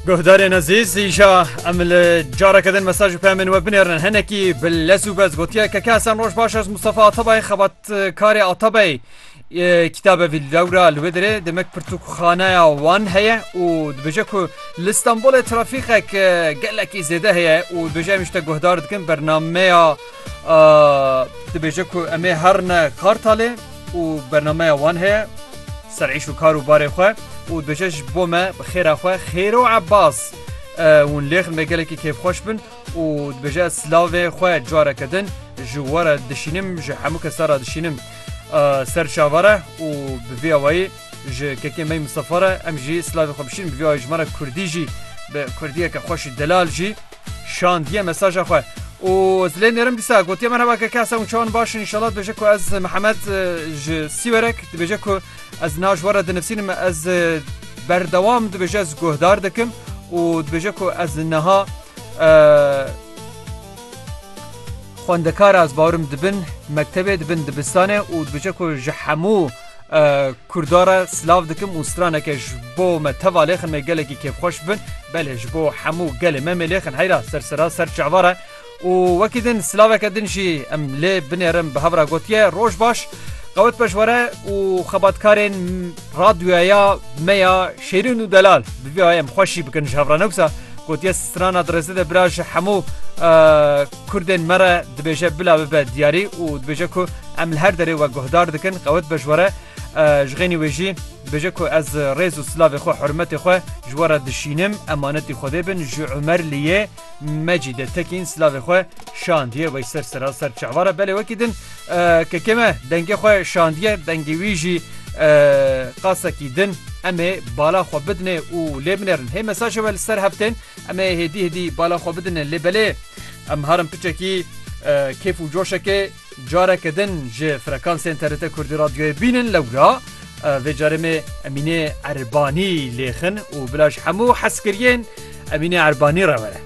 Guhdarên ezîz îşa em li careke din mesaj û pemên we binêrin henekî bi lez û bez gotiye ke kesen roj baş ez Mustafa Atabayê xebatkarê Atabey kitabe vî lewra li wê dirê demek pirtûkxaneya wan heye û dibêje ku li Stenbolê trafîqek gelekî zêde heye û dibêje em işte guhdar dikin bernameya dibêje ku em ê herine Kartalê û bernameya wan heye ser îş û kar û barê xwe û dibêje ji bo me bi xêra xwe Xêro Ebas hûn lêxin vê gelekî kêfxweş bin û dibêje ez silavê xwe careke din ji we re dişînim ji hemû kes te re dişînim ser çava re û bi vê awayî ji kekê me Mistefa re em jî silavê xwe bişînin bi vê awayî ji me re kurdî jî bi kurdiyeke xweş û delal jî Şandiye mesaja xwe û zilê nêrim dîsa gotiye merheba ke kesa û çawan başin inşallah dibêje ku ez Mihemed ji Sîwerek dibêje ku ez na ji we re dinivîsînim ez berdewam dibêje ez guhdar dikim û dibêje ku ez niha xwendekar ez bawirim dibin mektebê dibin dibistanê û dibêje ku ji hemû Kurdara silav dikim û straneke ji bo me teva lêxin me gelekî kêfxweş bin belê ji bo hemû gelê me mê lêxin heyra ser sera ser çavara û wekî din silaveke din jî em lê binêrin bi hevra gotiye roj baş qewet pejwere û xebatkarên radyoya me ya şêrin û delal bi vê em xweşî bikin ji hevra newsa gotiye strana dirêze de bira ji hemû Kurdên me re dibêje bila bibe diyarî û dibêje ku em li her derê we guhdar dikin, qewet be ji we re. Ji xênî wê jî dibêje ku ez rêz û silavê xwe, hurmetê xwe ji we re dişînim. Emanetî Xwedê bin ji Umer li yê Mecîdê tekîn silavê xwe şandiye wey ser seraser çavara. Belê wekî din kekê me dengê xwe şandiye, dengê wî jî qasekî din. Em ê bala xwe bidinê û lê binerin. Hê mesajê we li ser heftên Em ê hêdî hêdî bala xwe bidin lê belê em herin piçekî kêf û coşekê careke din ji frekansên TRT Kurdî Radyoyê bînin lewra vê carê me Emînê Erbanî lêxin û bila ji hemû heskiriyên Emînê Erbanî re were.